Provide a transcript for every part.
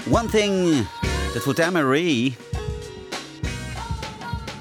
One Thing, dat wor d'Anne-Marie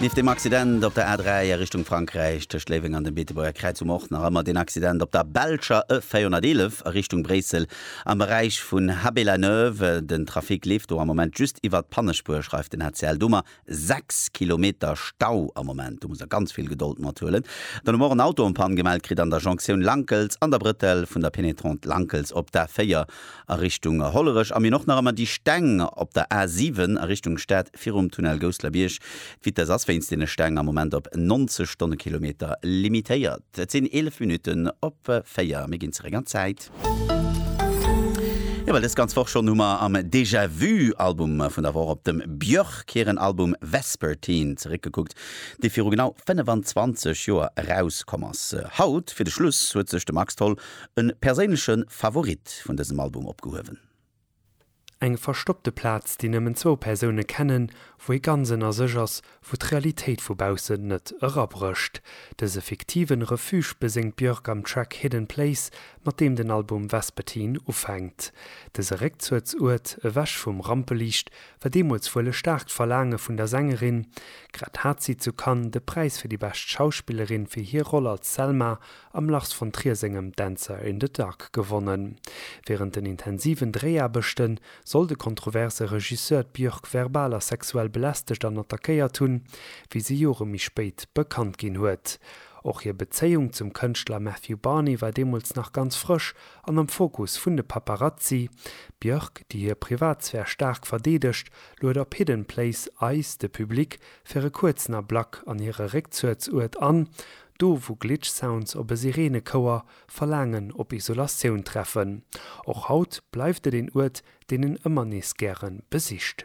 nieft deem Accident op der A3 a Richtung Frankräich tëscht Léiweng an dem Beetebuerger Kräiz um Ortner a ëmmer deen Accident op der belscher E 411 a Richtung Bréissel am Beräich vun Haby-la-Neuve. Den Trafic leeft do am Moment just iwwert d'Pannespuer, schreift den rtl domaer. 6 Kilometer Stau am Moment, do muss der ganz vill Gedold mat huelen. Dann hu mer och en Auto en panne gemellt kritt an der Jonktioun Lankels an der Brëtell vun der Pénétrante Lankels op d'A4 a Richtung Hollerech. A mir hunn och nach ëmmer déi Steng op der A7 a Richtung Stad virum Tunnel Gousselerbierg. D'Vitesse ass wéinst deene Steng am Moment op 90 Stonnekilometer limitéiert. Et sinn 11 Minutten op 4. Mir ginn zeréck an d'Zäit. Jo, well dës ganz Woch schonn hu mer am Déjà Vu Album vun der Woch op dem Björk hiren Album Vespertine zeréckgekuckt, dee viru genau 25 Joer erauskomm ass. Haut fir de Schluss huet sech de Max Tholl e perséinleche Favorit vun dësem Album opgehuewen. Eng verstoppte Plaz, déi nëmmen zwou Persoune kennen, wou ee ganz ënner sech ass, wou d'Realitéit vu baussen net erabrécht. Dëse fiktiven Refuge beséngt d'Björk am Track Hidden Place, mat deem den Album Vespertine ufänkt. Dëse Réckzuegsuert, ewech vum Rampeliicht, war deemools wuel e staarkt Verlaange vun der Sängerin. Grad hat si zu Cannes de Präis fir déi bescht Schauspillerin fir hir Roll als Selma am Lars von Trier sengem Dancer in the Dark gewonnen. Wärend den intensiven Dréiaarbechte soll de kontroverse Regisseur d'Björk verbal a sexuell belästegt an attackéiert hunn, wéi se Jore méi spéit bekannt ginn huet. Och hir Bezéiung zum Kënschtler Matthew Barney war deemools nach ganz frësch an am Fokus vun de Paparazzi. D'Björk, déi hir Privatsphär staark verdeedegt, luet op Hidden Place eis, de Public, fir e kuerzen Ablack an hire Réckzuehtsuert an, Do wou Glitch Sounds op e Sireenekouer verlaangen op Isolatioun treffen. Och haut bleift et een Uert deen en ëmmer nees gären besicht.